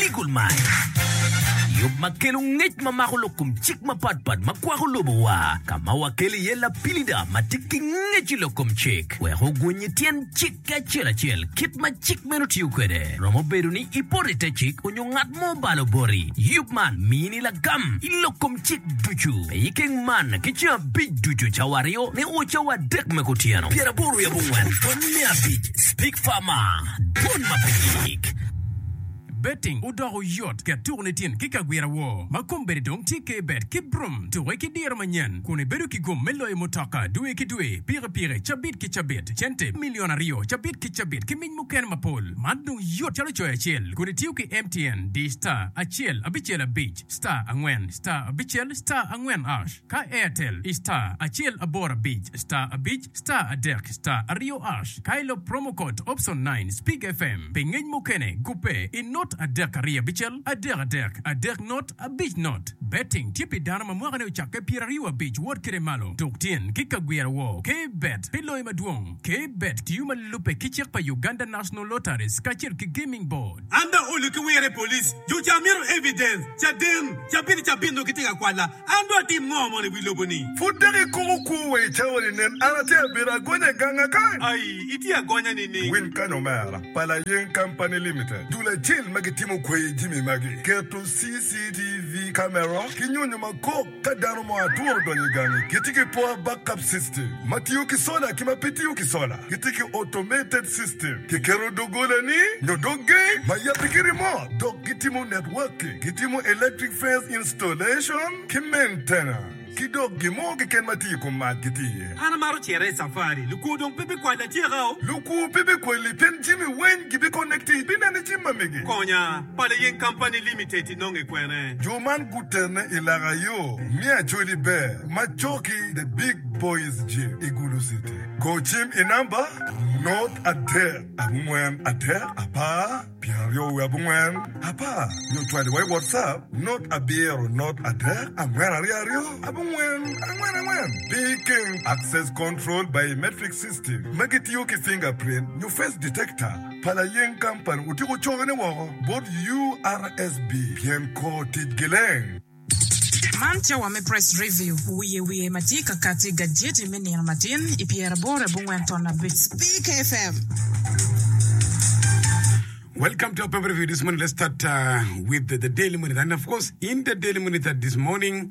Legal Mind, yub ma kelo ngec ma mako lok kom cik mapatpat ma kwako lobowa, ka ma wakelo iye lapilida ma tye ki ngec i lok kom cik wek oguny i tyen cik acel acel kit ma cik meno tiyo kwede. Romo bedo ni ipoto i te cik onyo ngat mo obalo boti, yub man miyini lagam i lok kom cik ducu me i keng man ki ceng abic ducu, cawa aryo me o, cawa adek me kutyeno, pyer aboro wiye abongwen, pwony me abic, Speak Farmer, Dwon ma pe yik. Betting odoko yot ket tuko ni tin ki kagwira wo ma kombeddi dong tye ke bet ki brum tuke ki diro manyen kun i bedo ki gum me loyo mutoka dwe ki dwe piki piki cabit ki cabit cente million aryo cabit ki cabit ki mic mukene mapol man dong yot calo coyo acel kodi tiyo ki mtn di star acel abicel abic star angwen star abicel star angwen ash ka airtel i star acel aboro abic star abic star adek star aryo ash ka ilop promo code option nine speak fm pi ngec mukene gubbe i not adek aryo abicel adek adek adek not abic not betting tye pi dano ma mwakane ocakke pyeraryo abic wot kede malo tuk tyen ki ka gwira wor ke bet pi loyo madwong ke bet tiyo ma lubbe ki cik pa Uganda National Lotteries kacel ki Gaming Board. An bene olu ki wire i police jo ca mito evidence caden cabit cabit nongo gitye ka kwala an dong atim ngo mono i wi lobo ni. Pud dok ikomo kwo wa i cawa ni nen an atye abedo agonya i gang a kany. Aii itye agonya nining. Win kany omera, pa Layeng Company Limited, dul acel ma gitimo kwayi jimi magi, keto CCTV camera ki nyonyo makok, Ka dano mo atwo odonyo i gangi, gitye ki poor backup system ma tiyo ki sola ki ma pe tiyo ki sola. Gitye ki automated system, kiketo doggolani nyo dog gate ma yabbe ki remote, dok gitimo networking, gitimo electric fence installation ki maintenance, ki dok gin mo keken ma tye i kom mac gitye iye. An amaro cito i safari. Lukwo dong pe bikwalla atyekao? Lukwo pe bikwalli pien jami weny gibiconnecti ibineno i jim ma mege. Konya, Pala Yeng Company Limited. inonge kwene? Jo man gutene i laka yo me Acholi Ber ma coki The Big Boys Gym i Gulu City. Go cim i namba, not adek abongwen adek apar pyeraryo wiye abongwen apar nyo cwali wa i WhatsApp, not abiro not adek angwen aryo aryo abongwen angwen angwen. Picking, Access Control Biometric System ma gitiyo ki fingerprint nyo face detector. pa layeng kampani otyeko cokone woko bot URSB pien kor tic gileng. Man tye wa me Press Review, wiye wiye ma tye ka kati i gajeti me nino matin i pyeraboro abongwen ton abic, Big FM. Welcome to our paper review this morning. Let's start uh, with the Daily Monitor. And of course, in the Daily Monitor this morning,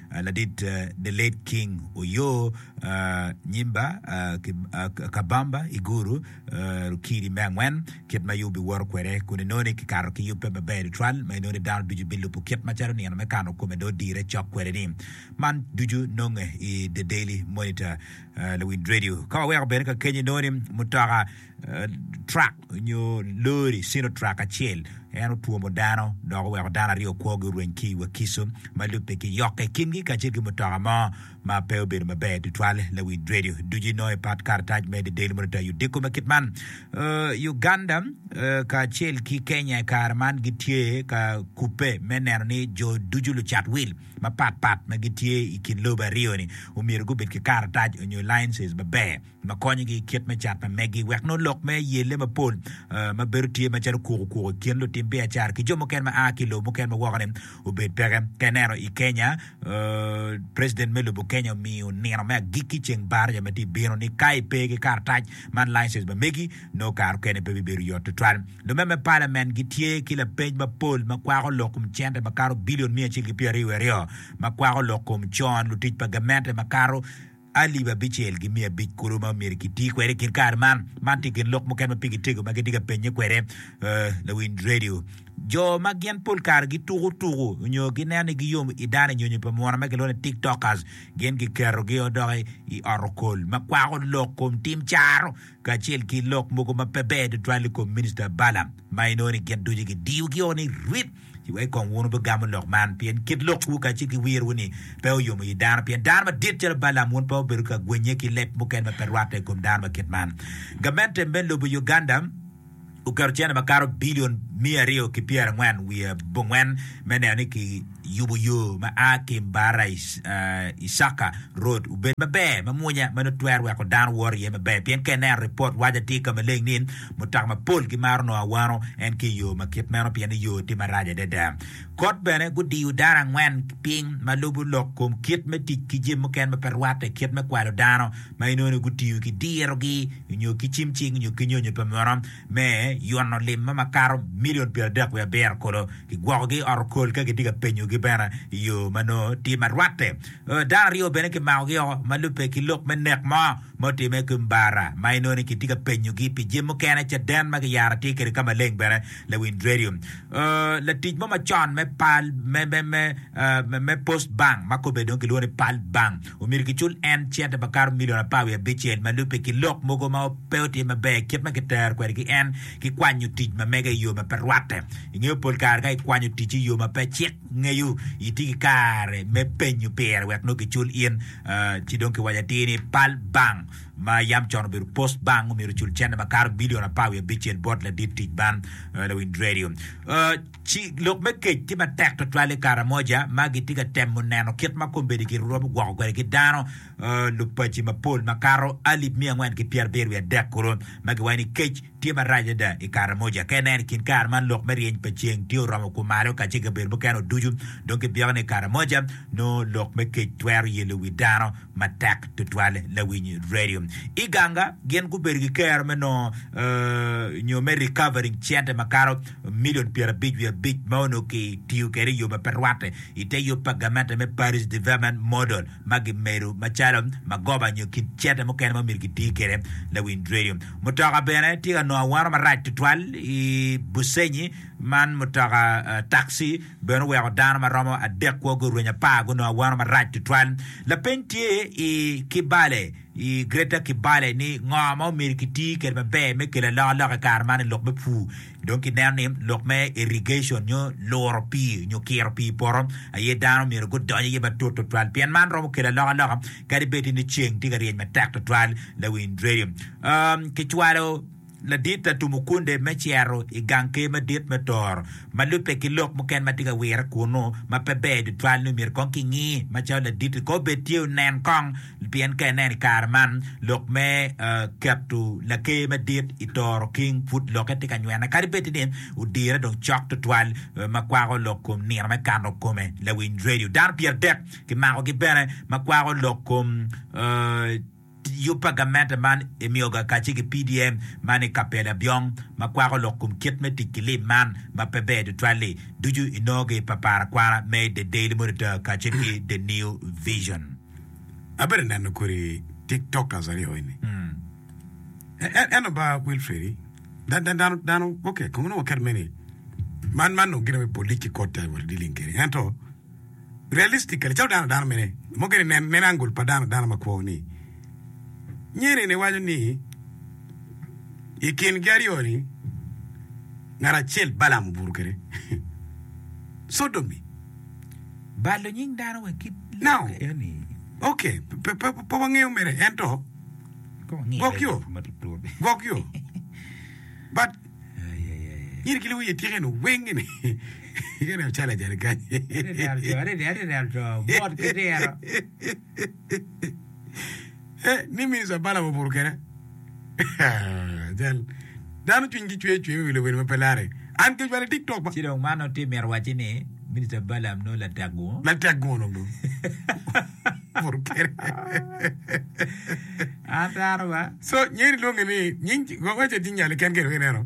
Ladit The Late King Oyoo Nyimba Kabamba Iguru Rukidi me angwen, kit ma Yubi woto kwede kun inoni kikato ki yubbe maber tutwal ma inoni dano ducu bilubo kit macalo nino me kano kome dong odire cok kwede ni. Man ducu nonge i The Daily Monitor Lawiny Radio. Ka waweko bene kakeny inoni mutoka. trak nyo lori, Sinotrak acel, en otwomo dano dok oweko dano aryo kwogi orweny ki i Wakiso, ma lubbe ki yokke i kingi kacel ki mutoka mo ma pe obedo maber tutwal. Lawinj redio ducu inongo i pat karatac me The Daily Monitor i odiko ma kit man. Uganda kacel ki Kenya i kare man gitye ka kubbe me neno ni jo ducu lucat wil mapatpat ma gitye i kin lobo aryo-ni omyero gubed ki karatac nyo licenses maber. ma konyogi i kit me cat ma meggi wek nongo lok me yelle mapol ma bedo tye macalo kuku kuku i kin lutim biacara ki jo mukene ma a ki i lobo mukene ma wokone obed peke. Ka ineno i Kenya, President me lobo Kenya omiyo nino me agikki ceng Barja ma tye ka bino ni ka ipe ki karatac man, license, ma megi, nongo kare okene pe bibedo yot tutwal. Lume me Parliament gitye ki lapeny mapol ma kwako lok kom cente makato billion miya acel ki pyeraryo wiye aryo ma kwako lok kom con lutic pa gamente makato alip abicel ki miya abic kulu ma myero kiti kwede i kin kare man. Man tye gin lok mukene ma pigi tego ma gitye ka pennye kwede lawiny redio. Jo ma gin pol kare gituko tuku nyo gineno ni giyom i dano nyonyo pa munu ma kilwongo ni tiktokers gin giketogi o dok i ot okol ma kwako lok kom tim caro kacel ki lok mogo ma pe ber tutwal i kom Minista Balaam ma inongo ni gin ducu gidiyogi o ni rip. Ci wek kong wun wubigamu lok man, pien kit lokwu kacel ki wirwu-ni pe oyomo i dano. Pien dano madit calo Balaam wun pe obedo ka gwenye ki leb mukene ma pe rwatte i kom dano ma kit man. Gamente me lobo Uganda oketo cene makato bilion miya aryo ki pyerangwen wiye abongwen me neno ni ki yubo yo ma a ki Mbarara Isaka road obed maber mamwonya ma nongo twero weko dano woro iye maber pien ka ineno report waco atir ka maleng ni Mutoka mapol gimaro nongo awano en ki i yo ma kit meno pien ni yo tye marac adada. Kot bene, gudiyo dano angwen piny ma lubo lok kom kit me tic ki jami mukene ma pe rwatte, kit me kwalo dano, ma inongo ni gutiyo ki dirogi nyo ki cim cing nyo ki nyonyo pa mono me yono lim ma makato milion pyeradek wiye abiro kulu. Kigwokogi i ot okol ka gitye ka penyogi bene i yo ma nongo tye ma rwatte. Dano aryo bene kimakogi woko ma lubbe ki lok me nek mo. ma otimme ki Mbara ma inongo ni kitye ka penyogi pi jami mukene, caden ma kiyaro tye kede ka maleng bene, lawinj redio, latic mo macon me pal me Post Bank ma kobbe dong kilwongo ni Pal Bank omyero kicul en cente makato milion apar wiye abicel ma lubbe ki lok mogo ma pe otye maber kit ma kitero kwede ki en ki kwanyo tic ma mege i yo ma pe rwatte. Ingeyo pol kare ka ikwanyo ticci i yo ma pe cik, Ngeyo itye ki kare me penyo pire wek nongo kicul in. Ci dong kiwaco atir ni pal bank ma yam con obedo Post Bank omyero ocul cente makato bilion apar wiye abicel bot ladit tic man, lawinj redio. Ci lok me kec tye matek twatwal i Karamoja ma gitye ka temo neno kit ma kombeddi giromo gwoko kwede ki dano lupaci mapol makato alip miya angwen ki pyerabiryo wiye adek kulu ma giwaco ni kec Tye marac ada i Karamoja. Ka ineno i kin kare man lok me ryeny pa ceng tye oromo kumalo kacel ki kabedo mukene o ducu, dong kibyeko ni Karamoja, nongo lok me kec twero yelo wi dano matek tutwal. Lawiny radio Iganga gin gubedo ki kero me nongo nyo me recovering cente makato milion pyerabic wiye abic ma onongo ki tiyo kwede i yo ma pe rwatte i te yub pa gamente me Parish Development Model. ma gimedo macalo magoba nyo kit cente mukene ma myero giti kwede. Lawind redio mutoka bene tye ka nongo awano marac tutwal i Busenyi man mutoka taxi bene oweko dano ma romo adek kwo gurwenyo apar gunongo awano marac tutwal. Lapeny tye i Kibale i Greater Kibale ni ngo ma myero kiti kwede maber me kelo alokaloka i kare man i lok me pur Dong kineno ni lok me irrigation nyo luro pii nyo kiro pii i poto aye dano myero gudony iye matut tutwal pien man romo kelo alokaloka kadi bed ni ceng tye ka ryeny matek tutwal. Lawiny Radio. Kicwalo ladit Latum Okunde me cito i gang ker madit me Toro ma lubbe ki lok mukene ma tye ka wire kunnu ma pe ber tutwal nyo myero kong kingi macalo ladit-ti kong obed tye onen kong Pien ka ineno i kare man, lok me keto Laker Madit i toro king pud lokke tye ka nywene, kadi bed ni odire dong cok tutwal ma kwako lok kom nino me kano kome. Lawiny redio dano pyeradek kimakogi bene ma kwako lok kom yub pa gamente man emiyoga kacce ki PDM man i Kapela Byong ma kwako lok kom kit me tic ki lim man ma pe ber tutwal-li. Ducu inongogi i paparakwana me The Daily Monitor kacel ki The New Vision. abedo neno kodi tiktokers aryo eni eno ba Wilfredi dano dano ok kong nongo ket meni man man nongo gin me police kot ta wal dealing kede ento realistically calo dano dano mene mo gini nen nen angol pa dano dano makwo ni nyeni ni waco ni i kingi aryo ni ngat acel Balaam obuto kede sodomi balo nying dano wa ki lok eni. Ok, pe wangeyo mere, ento gwok yo, gwok yo. But, nyiri ki luwiye tyeka eno weng eni, kene o calo ajali kany. Adada, adada, adada, adada, bot ki dero. He, ni Mister Balaam obuto kene. Cal, Dano cwinygi cwer cwer me wilo wer ma pe larre. An kec wala tik tok ba. Ci dong man nongo tye mito wacci ni Mister Balaam nongo latek gungo. Latek gungo dong dong. Obuto kene. Ataro ba. So, Nyeri lwonge ni nying, Gogo Ecet nying nyal-le keken dong ineno.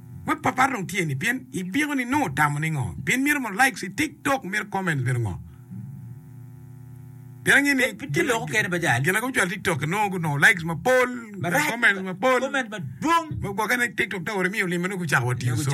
Web pa par dong tye ni pien ibiko ni nongo otamo ningo pien mito mo likes i tik tok mito comments mito ngo pien ange ni gin ago cwalo tik tok nongo gunongo likes mapol nongo comments mapol ma gwoke ne tik tok ta ori miyo lime nongo gucako wa tiyo soon.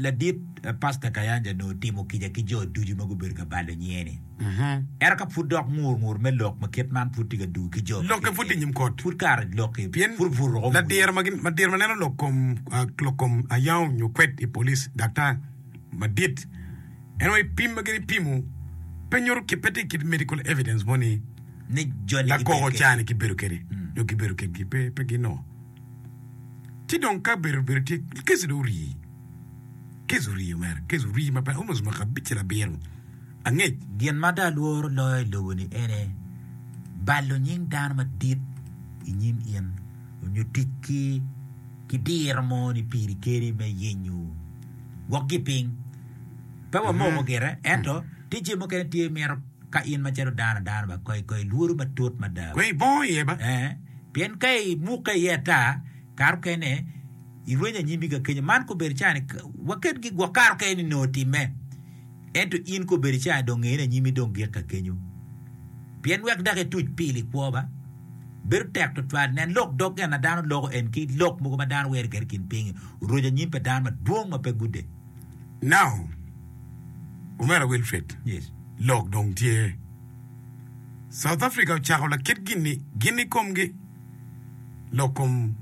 Ladit Pasta Kayanja onongo otimo kica ki jo ducu ma gubedo ka balo nyiye-ni. Ento ka pud dok ngur ngur me lok ma kit man pud tye ka dugo ki jo ma Lokke pud tye i nyim kot. Pud kare lokki Pien pud pud ruko ladiro ma gin- ladiro ma neno lok kom, ah, lok kom ayao nyo kwed i police, daktar madit, en onongo i pim ma gin ipimo pe nyuto ki, pe tye ki medical evidence mo ni ni joni gibedo lakoko kwedgi. ca-ni gibedo kwede nyo gibedo kwedgi. Pe, pe ginongo. Ci dong ka bedo bedo tye keco dong orii, keco orii omera, keco orii ma pe almost mwaka abic ki labiro angec. Gin ma dong alworo loyo i lobo-ni ene, balo nying dano madit i nyim in, nyo tic ki ki diro mo ni piri keri me yenyo gwokgi piny. Pe wamoko gire, ento tye jami mukene tye imito ka in macalo dano adana ba kong ilworu matut mada. Kong ibongo iye ba. Pien ka ibukke iye ata, kare okene irwenyo anyimbi ka kenyo, man kobedo cani waket gi gwok kare okene ni nongo time, ento in kobedo cani dong ngeni anyimi dong gik ka kenyo. Pien wek dok ituc pil i kwo ba, bedo tek twatwal. Nen lok dog gin ma dano loko en ki lok mogo ma dano wero kede kin pingi oroco anyim pa dano madwong ma pe gude. Now, Omera Wilfred, lok dong tye. South Africa ocako lakit gin-ni gin i komgi, lok kom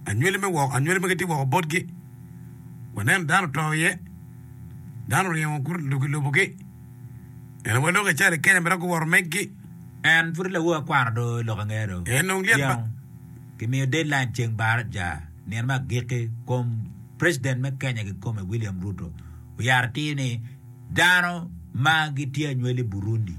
anywali me woko, anywali magi tye woko botgi. Waneno dano oto iye, dano oringo guruko i lobogi. Ento wa lok ical i Kenya mere guworo meggi. En pud lawo akwara do lok ange do. En dong lyet ba. Tyeno kimiyo deadline ceng Baraja nino me agikki kom president me Kenya kikome William Ruto oyaro atir ni Dano ma gitye anywel i Burundi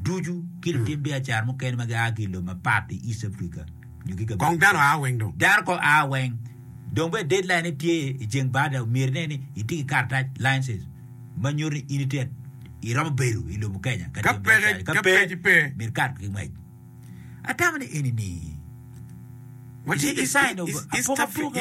ducu ki lutim biacara mukene ma gia ki i lobo mapat i East Africa nyo ki kabedo mukene, dano kong aa weng. Dong bene deadline-ne tye i ceng bada, myero ine ni iti ki karatac, license, ma nyuto ni in itye iromo bedo i lobo Kenya ka timo biacara-ni. Ka pe, myero ikat ki ngwec. Atamo ni eni-ni is a sign of apokapoka.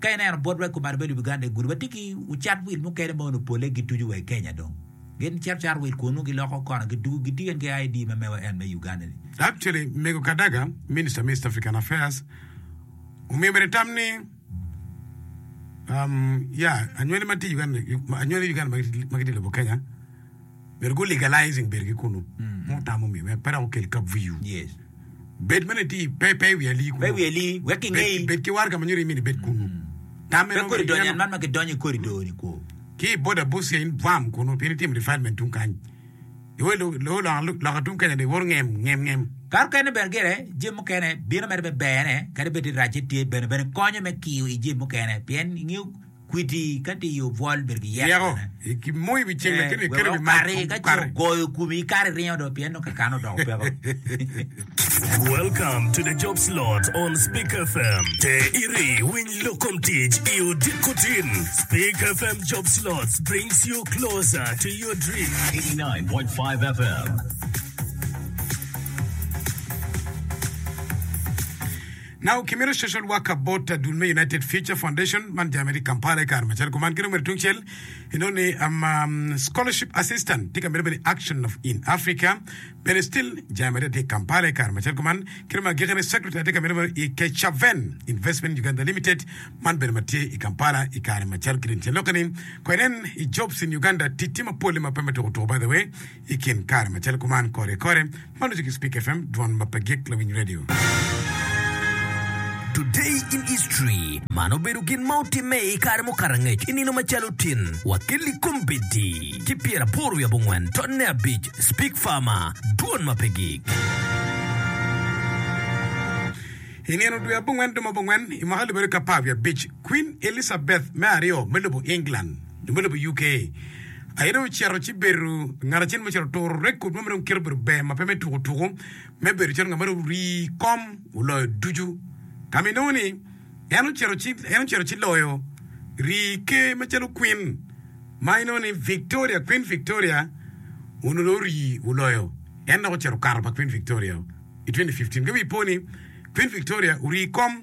Ka ineno bot wa ikome alubbe lubiganda igudi watye ki ocat wil mukene ma onongo pole gituco wa ikenya dong gin cito cato wil kun nongo giloko kona gidugo gitiyo en ki ID ma mewa en me Uganda ni. Actually mego Kadaga, minister me East African affairs omiyo mere tam ni um yeah anywali matye Uganda anywali Uganda magitye lobo Kenya. Myero gu legalizing bedo ki kunu mo otamo mi wek pe dok okel kap VU. Yes. Bed mene ti pe pe iwi ali kunu. Pe iwi ali wek ki ngei. Bed, bed ki war ka ma nyuto imini ibed kunu. Tam meno. Pe kodi donyo an man ma ki donyo i kodi do ni kwo. Ki boda Busia in bwam kunu pien itimo development tung kany. Iwe lo lo loka tung Kenya do iwoto ngem ngem ngem. Kare okene bene gire jami mukene bino mere be bene kadi bed ni racce tye bene bene konyo me kiyo i jami mukene pien ingeyo kwiti ka diyo bwol bedo ki yeko ne, wek okati ka ce ogoyo komi kare iringo do pien dong kakane odoko peko. Now kimito social worker bot adul me United Future Foundation man jami tye Kampala i kare macalo kuman ki dong bene tungcel inongo ni um, um, scholarship assistant tye ka mito bene action of in Africa bene still jami adada tye Kampala i kare macalo kuman ki dong agikene secretary tye ka mito bene i Kechaven Investment Uganda Limited man bene ma tye i Kampala i kare macalo ki dong caloke ni ko inen i jobs in Uganda ticce mapol ma pe ma tukutuku by the way I kin kare macalo kuman, kore kore ma loco ki Spik FM, Dwan ma pe gik lawiny radio. Today in History, Man obedo gin ma otimme i kare mukato angec i nino macalo tin, wa ki likombeddi ki pyeraboro wiye abongwen tonne abic, Spik Farmer, Dwan ma pe gik. I nino dwe abongwen duma abongwen i mwaka alip aryo ki apar wiye abic, Kwin Elizabeth me aryo me lobo England, jo me lobo i UK aye dong ocito ci bedo ngat acel ma ocito oturo record mo ma dong kite obedo ber ma pe me tuku tuku me bedo calo ngat ma dong orii i kom oloyo ducu ka ma inongo ni en ocito ci en ocito ci loyo rii ker macalo Queen ma inongo ni Victoria Queen Victoria onongo dong orii oloyo en dok ocito okato pa Queen Victoria-o i 2015 ka wi po ni Queen Victoria orii i kom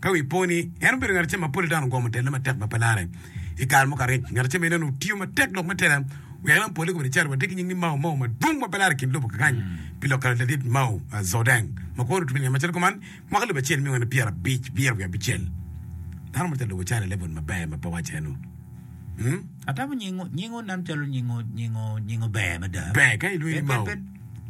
Ka wi po ni en obedo ngat acel ma pol i dano gwomo telle matek ma pe lare, i kare mo ka rec ngat acel ma ineno tiyo matek lok me tela wek en opole kobedi caro watye ki nying ni Mao Mao madwong ma pe lare i kin lobo kakany pi lok kare ladit Mao Zodeng ma kwo lutubi nge macalo kuman mwaka alip acel miya wene pyerabic wiye wiye abicel dano mo ca lobo cale level maber ma pe wacce nu. Atamo nyingo, nyingo nen calo nyingo nyingo nyingo ber mada. Ber ka ilwingo Pe- pe- mao. pe-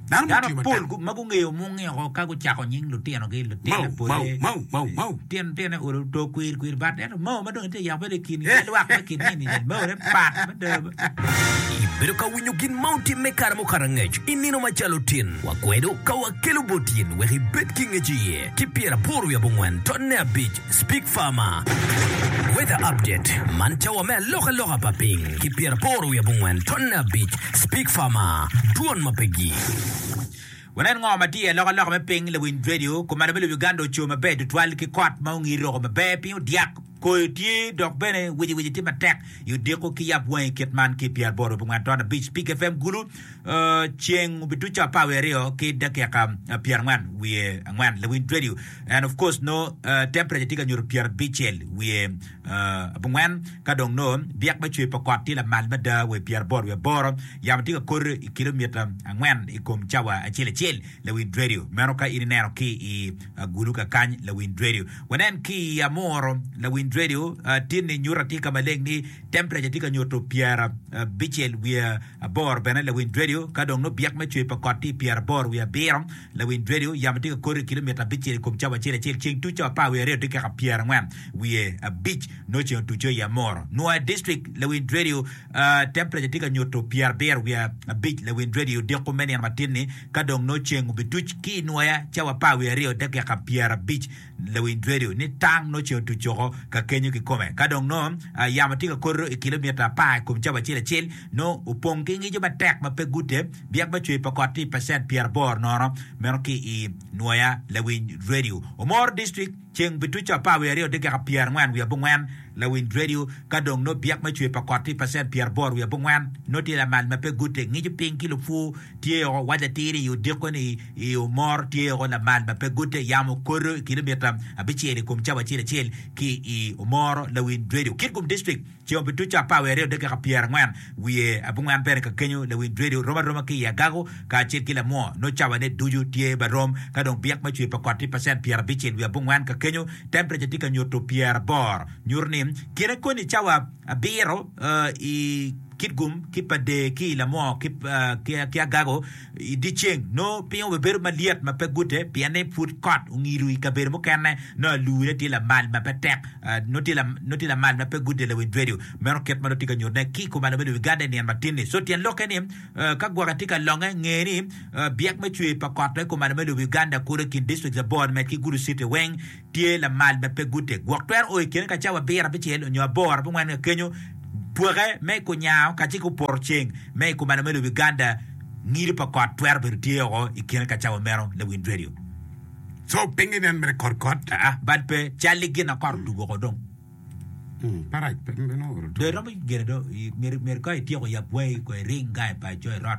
Dano Dano mutio pol matek. gu- ma gungeyo munge oko ka gucako nying lutinogi Mau, lutine mau, pole mau, mau, mau. tyen tyene olo to kwir kwir bat ento mao ma dong itye yako bedo i kin Eh. ki lwak me kin nini nen mao ne pat mada Ibedo ka winyo gin ma otim me kare mukato angec i nino macalo tin? Wakwedo ka wakelo bot in wek ibed ki ngec iye. Ki pyeraboro wiye abongwen, tonne abic, Speak Farmer, Weather update, Man cawa me alokaloka pa piny ki pyeraboro wiye abongwen tonne abic Speak Farmer, Dwon ma pe gi. Wunen ngo ma tye i alokaloka me piny lawiny redio. Kumalo me lobo Uganda oco maber tutwal ki kot ma ongi roko maber, piny odyak, koyo tye dok bene wici wici tye matek i odiko ki yab wangi kit man ki pyeraboro wiye abongwen tonne abic Speak FM, Gulu. Ceng obituco apar wiye aryo ki dakika pyerangwen wiye angwen lawiny dredio and of course no temperature tye ka nyuto pyerabicel wiye abongwen ka dong no byek me cwer pa kot tye lamal mada wa pyeraboro wiye aboro yamo tye ka kodo i kilomita angwen i kom cawa acel acel lawiny dredio meno ka in ineno ki i agulu kakany lawiny dredio wanen ki i amuro lawiny dredio tinni nyuta tye ka maleng ni Tempreca tye ka nyuto pyerabicel wiye aboro bene lawiny radio. Ka dong nongo byek me cwer pa kot tye i pyeraboro wiye abiro lawiny radio, yamo tye ka koto i kilomita abicel i kom cawa acel acel. Ceng tuco apar wiye aryo tye keka pyerangwen wiye abic nongo ceng otuco i Amoro. Nwoya District lawiny radio, Tempreca tye ka nyuto pyerabiro wiye abic lawiny radio diko me nino matin-ni. Ka dong nongo ceng obituc ki i Nwoya cawa apar wiye aryo dakika pyerabic Lawiny Dredu ni tang nongo ceng otuc woko ka kenyo kikome. Ka dong nongo yamo tye ka koto i kilomita apar i kom cawa acel acel, nongo opong ki ngico matek ma pe gute, byek ma cwer pa kot tye i pacent pyeraboro nono meno ki i nwoya. Lawiny Dredu omoro distrik ceng pi tuco apar wiye aryo dakika pyerangwen wiye abongwen. Lawiny Dredu ka dong nongo byek ma cwer pa kot tye i pacent pyeraboro wiye abongwen, nongo tye lamal ma pe gute, ngico piny ki lupwu tye woko, waco atir-ri i odiko-ni. I Omor tye o lamal ma pe gute yam okoto i kilomitta abicel i kom cawa acel acel ki i Omoro lawiny Radio Kitgum District ceng obi tuco apar wiye aryo dakika pyera angwen wiye abongwen bene ka kenyo lawiny radio rom aroma ki i Agago ka acel ki Lamwo no cawa ne ducu tye ba rom ka dong byek ma cwer pa kot tye pacent pyera abicel wiye abongwen ka kenyo temperature tye ka nyuto pyera aboro nyuto ni kine koni cawa abiro i Kitgum ki Pader ki i Lamwo ki Agago I dyeceng, nongo piny obibedo malyet ma pe gute pienni pud kot ongido i kabedo mukene. Nongo alure tye lamal ma pe tek, nongo tye lamal ma pe gute lawiny redio. Meno kit ma nongo tye ka nyutte ki i kom alama i Uganda i nino matin-ni. So tyen lokke ni, ka gwoke tye ka longe, nge ni byek me cwer pa kot ma i kom alama i lobo Uganda kulu i kin dictrict abor-ni med ki Gulu citi weng. tye lamal ma pe guteg gwok twero o i kine ka cawa abiro, abicel, onyo aboro, abongwen ka kenyo. Pwoke me i kunyango kacel ki oporo ceng me i kumalo me lobo Uganda, ngido pa kot twero bedo tye oko i kine ka cawa meno ne Wind Radio. So pingi nen mere kot kot? Aa, bad pe, cal i gin na kot odugo oko dong. Hmm, parac pe meno oro Dong two. iromo gene dong, myero, myero ka ityeko yab wangi ko iring gangi pa co irot.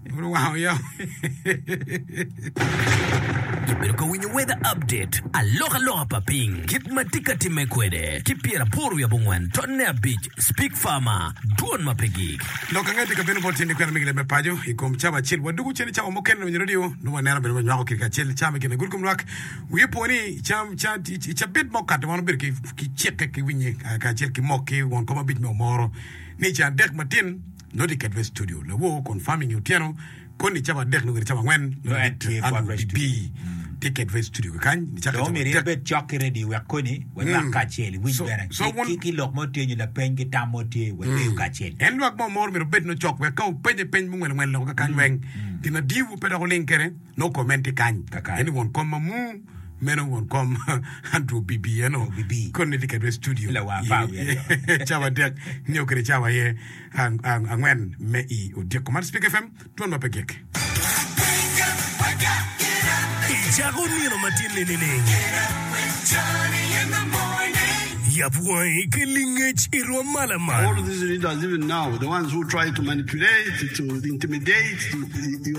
Pud wango yo. Ibedo ka winyo weather update, alokaloka pa piny, kit ma tye ka timme kwede, ki pyeraboro wiye abongwen totne abic, Speak Farmer, dwon ma pe gik. Lok ange tika bino bot tyen i kwena me gilembe paco i kom cawa acel? Wadwogo cen i cawa mukene winyo redio nongo waneno bene wanywako kit kacel cawa me kine gudo kom lwak wiye opwo ni cam ca i cabit ma okato wan obedo ki cikke ki winye kacel ki mok ki won kom abic me omoro ni ca adek matin Nongo tye ket wek studio lawo kun farming i otyeno koni cawa adek nongo kede cawa angwen nongo dit Andrew bibi tye ket wek studio kekany ni cake cawa adek. Dong omyero in bed cok ki radio wek koni walwak kacel iwinj bene ki lok mo tye nyo lapeny ki tam mo tye wadeyo kacel. En lwak mo moro myero obed nongo cok wek ka openye peny mungwel ngwel loko kekany weng gin madiwu pe dok oling kede. No comment tye kany. Kaka. Eni won kom mamu. Meno won kom Andrew Bibi eno. Andrew Bibi. Koni ni kiketo i studio. Lawar apar wiye aryo. Cawa adek nyo kede cawa aye angwen me i odyeko man. Speaker FM, dwon ma pe gik. Icako nino matin ninining? Yap wangi ki lingec i rwom mala man.